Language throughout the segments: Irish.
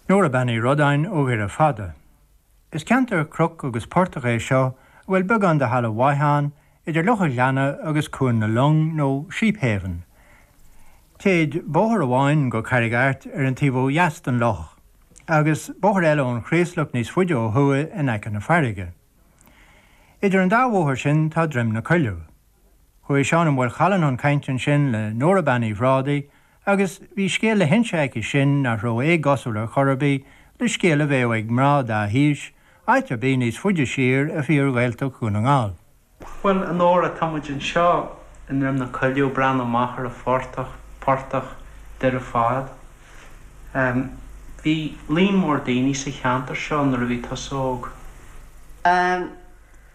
Nóra Bean Uí Rodáin ó Dhoire Fada. Is ceantar cnoc agus portach é seo a bhfuil beagán de thalamh mhaith ann idir Loch an Ghleanna agus Cuan na Long nó Sheephaven. Téid bóthar amháin go Carraig Airt ar an taobh ó dheas den loch, agus bóthar eile ón Chraoslach níos faide ó thuaidh in aice na farraige. Idir an dá bhóthar sin tá Droim na Coilleadh. Chuaigh Seán Ó Maolchalann chun cainte ansin le Nóra Bean Uí Bhrádaigh, agus bhí scéal le hinse aici sin nach raibh éagosúil ar chor ar bith le scéal a bheadh ag mná dá haois áit ar bith níos faide siar i bhfíor-Ghaeltacht Dhún na nGall. Bhuel, a Nóra, tá muid anseo i nDroim na Coilleadh ag breathnú amach ar an phortach, Portach Dhoire Fad. Em, bhí líon mór daoine sa cheantar seo nuair a bhí tusa óg. Em,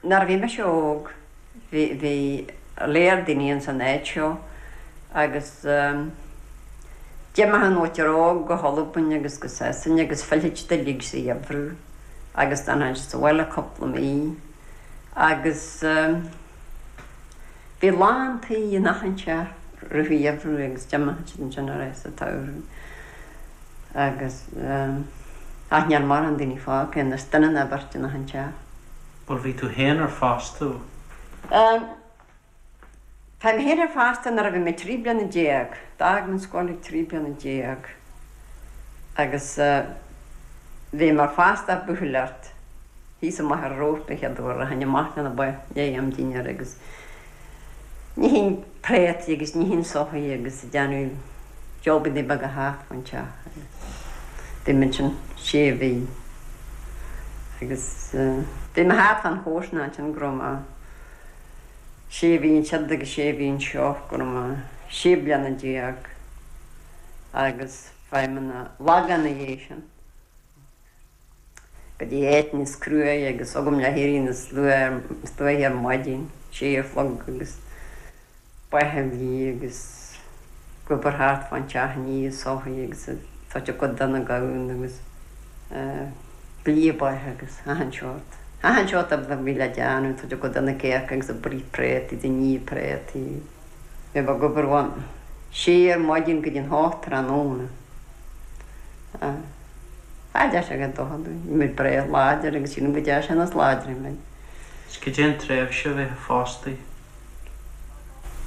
Nuair a bhí mise óg bhí lear daoine ins an áit seo agus d'imeodh an mhuintir óg go hAlbain agus go Sasain agus phillfeadh siad uilig sa gheimhreadh agus d'fhanfadh siad sa bhaile cúpla mí agus Bhí lán tí in achan teach i rith an gheimhreadh agus d'imeodh siad ansin ar ais sa tsamhradh agus ach níl mórán daoine fágtha anois, duine nó beirt in achan teach. Bhuel, bhí tú féin ar fastódh. Ehm, tá mé féin ar fastódh nuair a bhí mé trí bliana déag, d'fhág mé an scoil ag trí bliana déag. agus bhí mé fastaithe ag buachailleacht thíos amach ar Rós an chéad uair. Rachainn amach leis na ba i ndiaidh am dinnéir agus nífinn préataí agus nífinn soithí agus ag déanamh jabannaí beaga thart fán teach agus bhí mé ansin sé mhí agus bhí mé thart fán chomharsanacht ansin go raibh mé sé mhí ansiúd agus sé mhí anseo go raibh mé sé bliana déag. agus chuaigh mé chun an Lagáin ina dhiaidh sin, go dtí áit níos cruaidhe agus agam le héirí níos luaithe ar maidin, sé a chlog agus ba a bhlí agus ag obair thart fán teach ag ní soithí agus ag tabhairt a gcuid do na gamhna agus ag blí ba agus achan seort, achan seort a bhí le déanamh, ag tabhairt a gcuid do na cearca agus ag bruith préataí ag ní préataí. Bheifeá ag obair ón 6 ar maidin go dtí an 8 tráthnóna. Cha dtearn sé aon dochar dúinn. Bhí muid bréagh láidir agus sílim go dtearn sé níos láidre muid. Is goidé an tréimhse a bheifeá fostaithe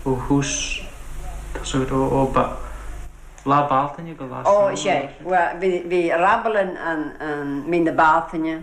ó thús tosaigh ró ó ba, Lá Bealtaine go Lá Samhna, Ó, is é. Bhuel, bhí rabble ann mí na Bealtaine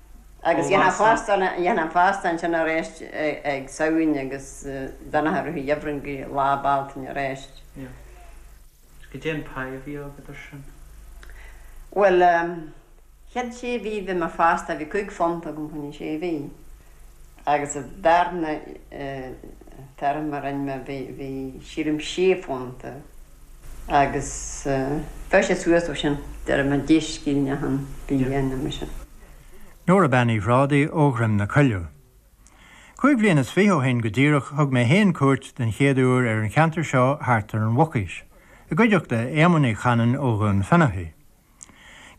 Agus dhéanfaí an fastódh sin arís ag Samhain agus d'fhanfadh a rith an gheimhridh go Lá Bealtaine arís. Is goidé an pháighe a bhí agat ar sin. Bhuel, chead sé mhí bhí mé fastaithe, bhí cúig phunta agam chun na sé mhí. agus an darna téarma a rinn mé bhí bhí sílim sé phunta agus chuaigh sé suas ó sin déarfainn deich scillinge achan mhí dhéanamh mar sin. Nóra Bean Uí Bhrádaigh ó Dhroim na Coilleadh. Cúig bhliain is fiche ó shin go díreach thug mé fhéin cuairt den chéad uair ar an cheantar seo thart ar an Mhucaois, i gcuideachta Éamoin Uí Chanainn ó Dhún Fionnachaidh.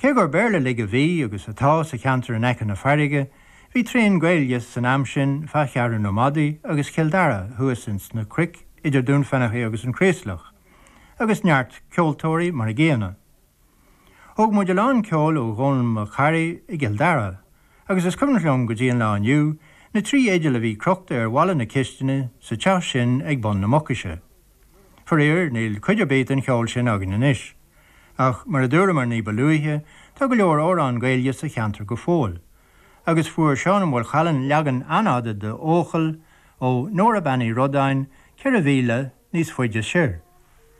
Cé gur Béarla uilig a bhí agus atá sa cheantar in aice na fairrge, bhí tréan Gaedhilge san am sin fa' Cheathrú na Madadh agus Cill Dara thuas ins na cruic idir Dún Fionnachaidh agus an Craoslach, agus neart ceoltóirí mar a gcéanna. Thóg muid a lán ceoil ó Dhónall Mac Carthaigh i gCill Dara, agus is cuimhneach liom go dtí an lá inniu na trí fhidil a bhí crochta ar bhalla na cisteanadh sa teach sin ag bun na Mucaise. Faraor, níl cuid ar bith den cheol sin againn anois. Ach, mar a dúramar ní ba luaithe, tá go leor amhrán Gaeilge sa cheantar go fóill. Agus fuair Seán Ó Maolchalann leagan an-fhada de 'Eochaill', ó Nóra Bean Uí Rodáin, ceithre mhíle níos faide soir.